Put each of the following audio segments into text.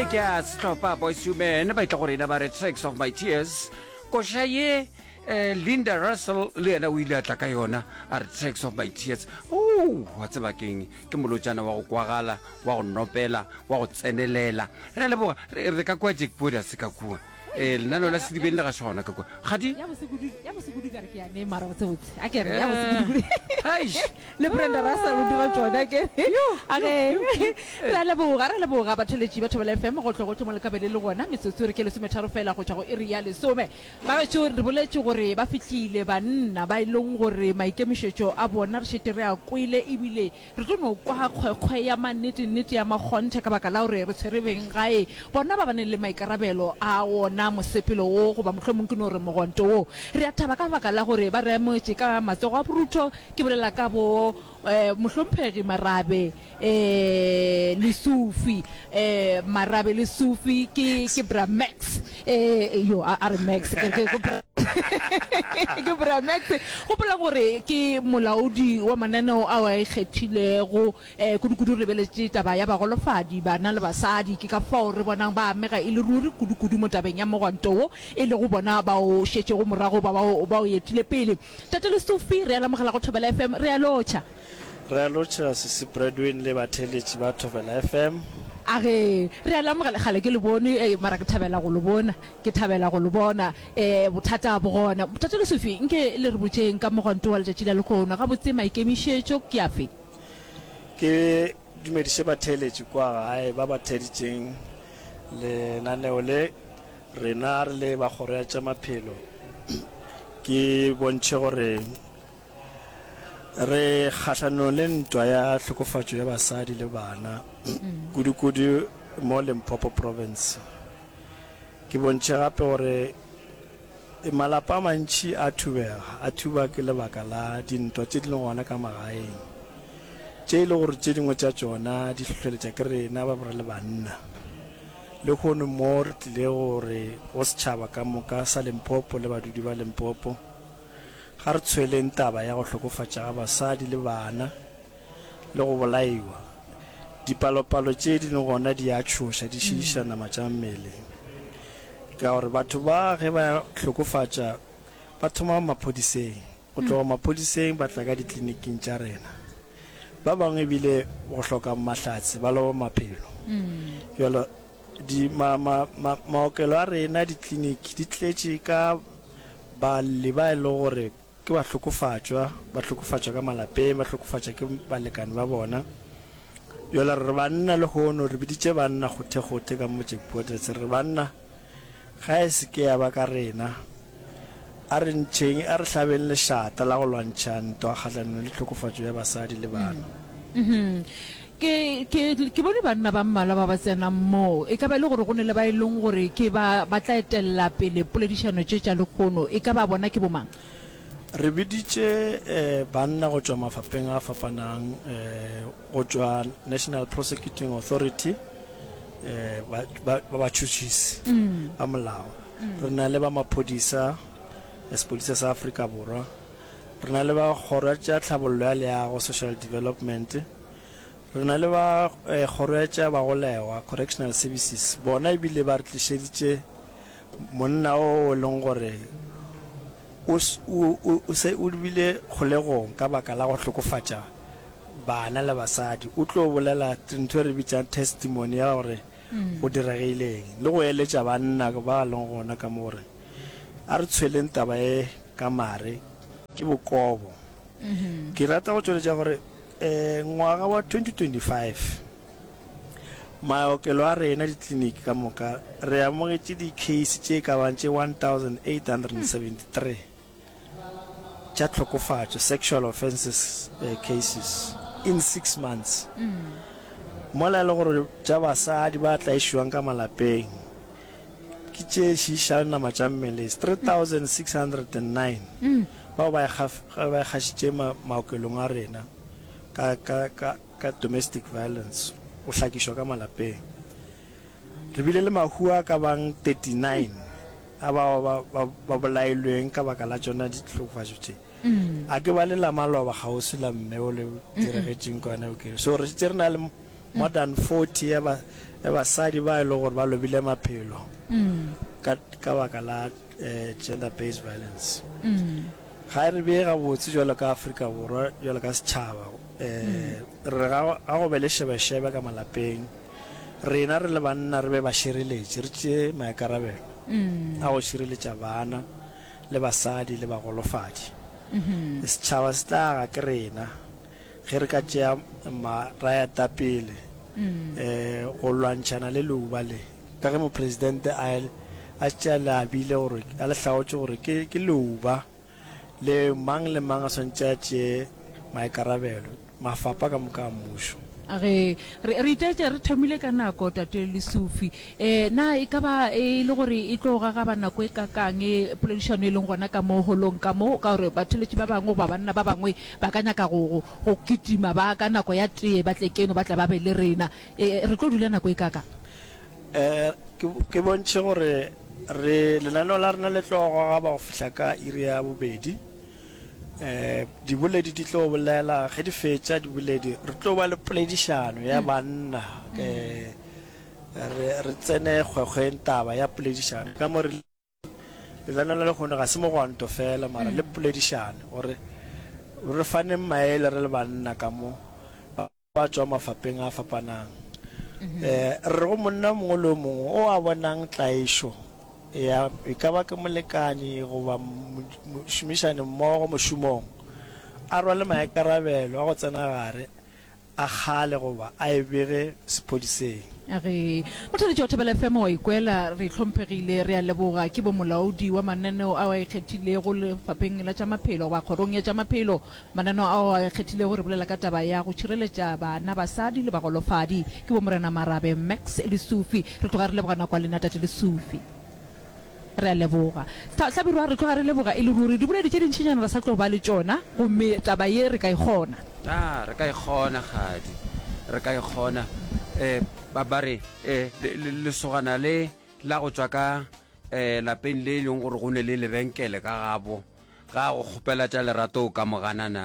ye ke a setlhopha boys to men ba itla go rena ba re tracks of my tears koša ye eh, linda russell le yena o ile a tla ka yona a re tracks of my tears o wa tseba keng ke molotšana wa go kwagala wa go nopela wa go tsenelela re a leboga re re ka kua jack boda se ka kua ee lenaneo la sedibeng le ga se gona ka kwa gadi le brenda russell o dira tsona ke ra leboga ra leboga batheletši ba thobela fm go tlo go tlomo le kabele le gona metsotso re ke lesometharo fela go tšwa go iri ya lesome ba gaetso re boletše gore ba fihlile banna ba e leng gore maikemišetšo a bona re šete re a kwele ebile Re tlo no kwa kgwekgwe ya mannetenete ya makgonthe ka baka la gore re tshwere beng gae bona ba ba neng le maikarabelo a wona mosepelo wo, goba mohlomong ke no re mogonto wo. Re a thaba ka baka la gore ba re amogetše ka matsogo a borutho, ke bolela ka bo Mohlomphegi Marabe le Sufi. Marabe le Sufi ke, ke Bra Max. Eh, yo a a re max ke ke- ke bra- ke bra max gopola gore ke molaodi wa mananeo ao a ikgethilego um kudu-kudu re beletše taba ya bagolofadi bana le basadi ke ka fao re bonang ba amega e le ruri kudu-kudu mo tabeng ya mogwanto wo e lego bona ba o šetšego morago ba ba o- ba o etile pele tate le sofi re a lamogela go thobela fm re a lotšha Re a lotšhela Sisi Bradwin le batheeletši ba Thobela FM. A re, Re a le amogela. Kgale ke le bone, mara ke thabela go le bona. Ke thabela go le bona. Um, bothata bo gona. Bothata le Sophie, nke le re botšeng ka mogwanto wa letšatši la lekgono. Gabotse maikemišetšo ke afe? Ke dumediše batheeletši kwa gae ba ba theeditšeng lenaneo le, rena re le ba Kgoro ya tša Maphelo. Ke bontšhe gore re kgahlanong le ntwa ya tlhokofatšo ya basadi le bana mm. kudu-kudu mo limpopo province ke bontšhe gape gore e malapa a mantšhi a thubega a thuba ke lebaka la dintwa tše di leng gona ka magaeng tše e le gore tše dingwe tša tšona di tlhotlheletša ke rena ba bore le banna le kgono mo re tlile gore go setšhaba ka moka sa limpopo le badudi ba limpopo Ga re tshweleng taba ya go hlokofatša ga basadi le bana le go bolaiwa. Dipalopalo tše di le gona di a tšhoša, di šiiša nama tša mmele. Ka gore batho ba ge ba hlokofatša ba thoma maphodiseng, go tloga maphodiseng ba tla ka ditliniking tša rena. Ba bangwe ebile go hloka mahlatse ba loba maphelo. Bjalo di ma, ma, ma, maokelo a rena, ditliniki di tletše ka Ba lle ba e lego gore ke bahlokofatšwa, ba hlokofatšwa ka malapeng, ba hlokofatšwa ke balekane ba bona. Yola re re banna, lehono re biditše banna kgothekgothe ka motšeng Poetres, re re banna, ga e se ke ya ba ka rena. A re ntšheng, a re hlabeng lešata la go lwantšha ntwa kgahlanong le tlhokofatšo ya basadi le bana. Ke, ke, ke bone banna ba mmalwa ba ba tsenang moo. E ka ba e le gore go ne le ba e leng gore ke ba, ba tla etelela pele poledišano tše tša lekgono. E ka ba bona ke bomang? Re biditše eh, banna go tšwa mafapheng a fapanang, eh, go tšwa National Prosecuting Authority, eh, ba, ba, ba batšhotšhisi ba molao. Re na le ba maphodisa, eh, Sepodisa sa Afrika Borwa. Re na le ba Kgoro ya tša Tlhabollo ya Leago, Social Development. Re na le ba Kgoro ya tša Bagolegwa, Correctional Services, bona e bile ba re tlišeditše monna o e leng gore o se o lebile kgolegong ka baka la go hlokofatša bana le basadi. O tlo bolela ntho e re bitšang testimony ya gore go diregile eng le go eletša banna ba leng gona ka mo gore a re tshweleng taba e ka mare ke bokobo. Ke rata go tšweletša gore um ngwaga wa 2025 maokelo a rena ditliniki ka moka re amogetše dicase tše ka bang tše 1873 tša tlhokofatšo sexual offenses uh, cases in six months mola e le gore tša basadi ba tlaišiwang ka malapeng ke tše šišang nama tša mmele 3609 bao ba e kgašitše maokelong a rena ka domestic violence, go hlakišwa ka malapeng. Re bile le mahu a ka bang 39 a bao ba bolailweng ka baka la tšona dihlokofatšo tše. A ke ba le la maloba kgauswi la mme o le diregetšeng kwana Ukereyi? So re šetše re na le more than 40 ya basadi ba e lego gore ba lobile maphelo ka baka la eh, gender based violence mm. ga e re bee gabotse jalo ka aforika borwa jalo ka setšhaba um re re ga go be le shebeshebe ka malapeng rena re le banna re be ba šireletše re tšee maikarabelo mm. a go šireletša bana le basadi le bagolofadi mm-hmm. setšhaba se tlaga ke rena ge re ka tšea marayata pele um mm. eh, go lwantšhana le leuba le Ka ge Mopresidente a ile a tšea leabile gore a le hlaotše gore ke, ke leuba le mang le mang a swanetše a tšee maikarabelo, mafapha ka moka a mmušo. A re, Re, re itaetša re thomile ka nako, Tate Lesufi. E, na e ka ba e le gore e tlo gagaba nako e kakang e poledišano e leng gona ka mo holong ka mo, ka gore batheeletši ba bangwe goba banna ba bangwe ba ka nyaka go, go, go kitima ba ka nako ya tee ba tle keno ba tle ba be le rena? E, re tlo dula nako e kaka? E, ke, ke bontšhe gore re lenaneo la rena le tlo goga ba go fihla ka iri ya bobedi. E, diboledi di tlo bolela, ge di fetša diboledi re tlo ba le poledišano ya mm. banna. E, re, re tsene kgwekgweng taba ya poledišano ka mo re Lelana la lehono ga se mogwanto fela, mara le poledišano, gore re faneng maele re le banna ka mo ba ba tšwa mafapeng a fapanang. Re re go monna mongwe le o mongwe o a bonang tlaišo ya, e ka ba ke molekani goba mošomišani mmogo mošomong, a rwale maikarabelo a go tsena gare a kgale goba a e bege sephodiseng. A re, Mothalentši wa Thobela FM o a ikwela, re hlomphegile, re a leboga, ke bomolaodi wa mananeo ao a ikgethilego Lefapheng la tša Maphelo goba Kgorong ya tša Maphelo, mananeo ao a ikgethilego re bolela ka taba ya go tšhireletša bana, basadi le bagolofadi. Ke Bomorena Marabe, Max Lesufi. Re tloga re lebogana kwa lena Tate Lesufi. Re a leboga. Sa, hlabirwa, re tloga re leboga e le ruri. Diboledi tše dintšinyana re sa tlo ba le tšona, gomme taba ye re ka e kgona. A, re ka e kgona, kgadi. Re ka e kgona. E, ba, ba re, e, le, le, lesogana le la go tšwa ka, e, lapeng le e leng gore go ne le lebenkele ka gabo, ga a go kgopela tša lerato o ka mo gana na?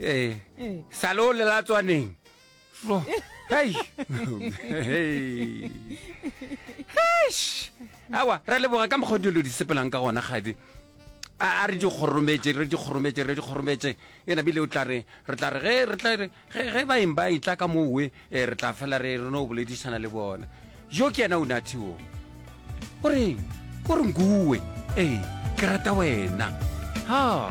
Ee, sa le o lela tswaneng. Tlo, hei. Heish. Awa, ra leboga ka mokgwa dilo di sepelang ka gona kgadi. A a re di kgorometše, re di kgorometše, re di kgorometše. Ena bile o tla re re tla re ge re tla re ge ge ba eng ba itla ka moo we, eh, re tla fela re re no boledišana le bona. Jo ke yena o nathi o. O reng? O re nguwe. Ee, ke rata wena. Ha.